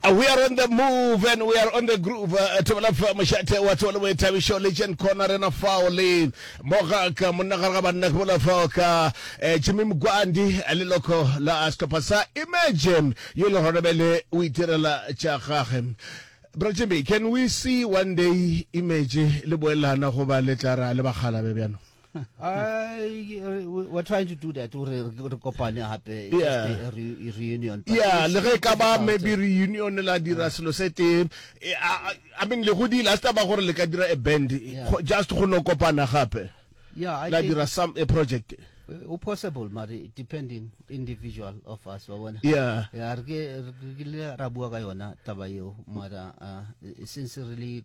Uh, we are on the move and we are on the groove uh, tebela fa mošate wa tsebo le boithabišo legend corner rena fao le moga ka monna gare ga banna ke bola fao ka eh, jimmy mokwandi eh, le loko la uh, sehlopha sa imagine yo le gona bele o itirela tša gage bra jimmy can we see one day image le boelana goba le tla ra le bagalabe bjano I, uh, we're trying to do that gore re kopane gape yeah. re reunion yeah le ge ka ba maybe reunion la dira selo se tee eh, i mean le go di last ba gore le ka dira a band just go no kopana gape yeah la dira some a project o uh, possible mari depending individual of us wa bona yeah ya re ke ra bua ka yona taba eo mara uh, since really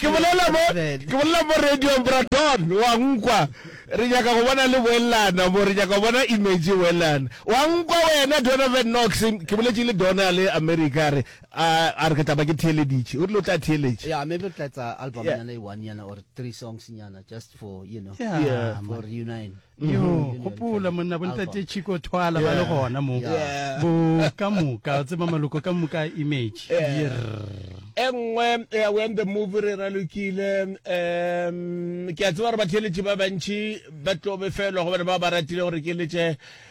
ke bolela mo ke bolela mo radio braton wa nkwa re nyaka go bona le boelana mo re nyaka go bona image boelana wa nkwa wena donovan knox ke boletse le dona le america re a re ke taba ke theeleditše o rile o tla theeletše yeah maybe tlatsa album yana e one yana or three songs yana just for you know yeah, yeah for reunion yo mm-hmm. gopola monna bontate chico thwala ba le gona mo bo ka moka tseba maloko ka moka image e nngwe ya when the movie re ralokile um ke a tseba gore batheletše ba bantšhi ba tlo befelwa go bana ba ba ratile gore ke letse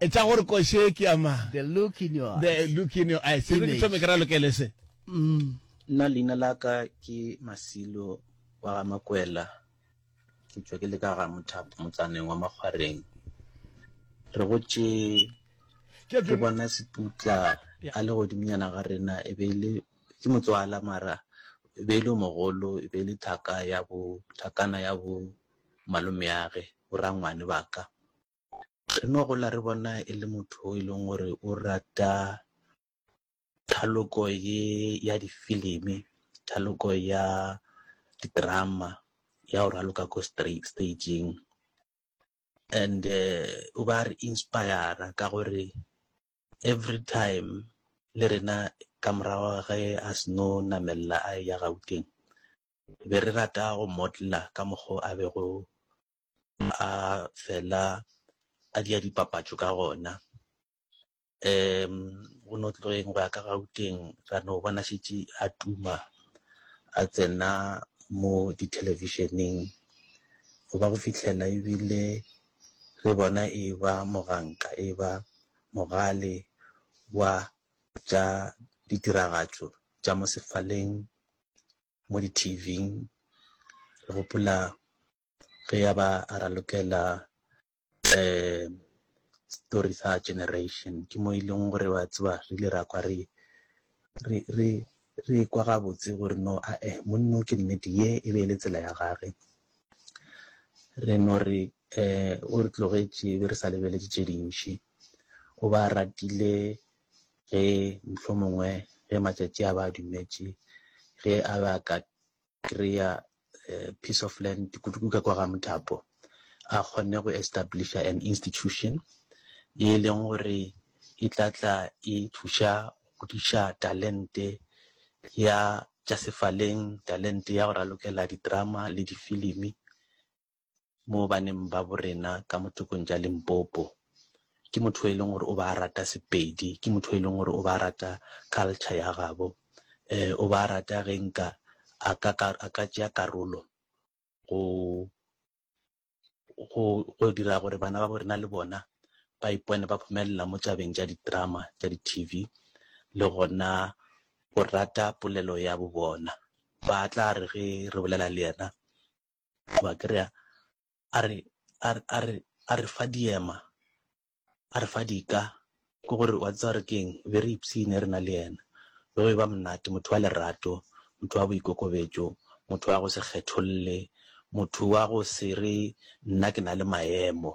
Etša gore koši ye ke ya mang? The look in your eyes. The look in your eyes. Image. Ke thome ke ra lokele se. Mm. Nna leina la ka ke Masilo wa ga Makwela. Ke tšwa ke le ka ga Mothapo motsaneng wa Makgwareng. Re gotše ke bona Seputla a le godimonyana ga rena e be le ke motswala mara e be e le mogolo e be e le thaka ya bo thakana ya bo malomeage borangwane ba ka Re no gola re bona e le motho o e leng gore o rata thaloko ye ya difilimi thaloko ya didrama ya go raloka ko stageng and eh, o ba re inspira ka gore every time le rena ka morago ge a seno namelela a ya gauteng be re rata go modela ka mokgo a bego a fela a dia dipapatšo ka gona um go no tloeng go ya ka gauteng ra no bona šetše a tuma a tsena mo dithelebišeneng go ba go fitlhela ebile re bona e ba moganka e ba mogale wa tša ditiragatšo tša mo sefaleng mo di-tvng re gopola ge ya ba a ralokela um story sa generation ke mo e leng gore wa tseba re ile ra kwa re re re re kwa gabotse gore no a e monno ke nnete ye e be e le tsela ya gage re no re um o re tlogetše be re sa lebeletse tše dintši o ba ratile ge mhlomongwe ge matšatši a ba dumetše ge a ba ka kry-a eh, piece of land kudu ka kwa ga mothapo a kgonne go establisha an institution e leng gore e tla tla e thuša go diša talente ya tša sefaleng talente ya go ralokela ditrama le difilimi mo baneng ba borena ka mo tokong tša Limpopo. Ke motho e leng gore o ba rata Sepedi, ke motho e leng gore o ba rata culture ya gabo. Eh, o ba rata ge nka a ka, a ka tšea karolo go, go, go dira gore bana ba borena le bona ba ipone ba phumelela mo tabeng tša di-drama tša di-T_V le gona go rata polelo ya bo bona. Ba tla re ge re bolela le yena, wa kry-a a re a re a re a re fa diema a re fa dika ke gore wa tseba re keng be re ipsine re na le yena be go e ba monate motho wa lerato motho wa boikokobetso motho wa go se kgetholle motho wa go se re nna ke na le maemo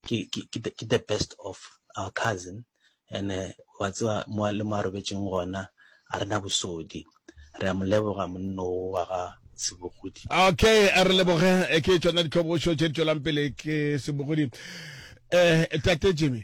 ke ke ke the, the best of our cousin and eh, wa tseba mo le mo a robetseng gona a rena bosodi re a mo leboga monno wa ga sebogodi okay a re leboge eh, ke tsona ditlhobošo tše di tšwelang pele ke sebogodi um tate jimmy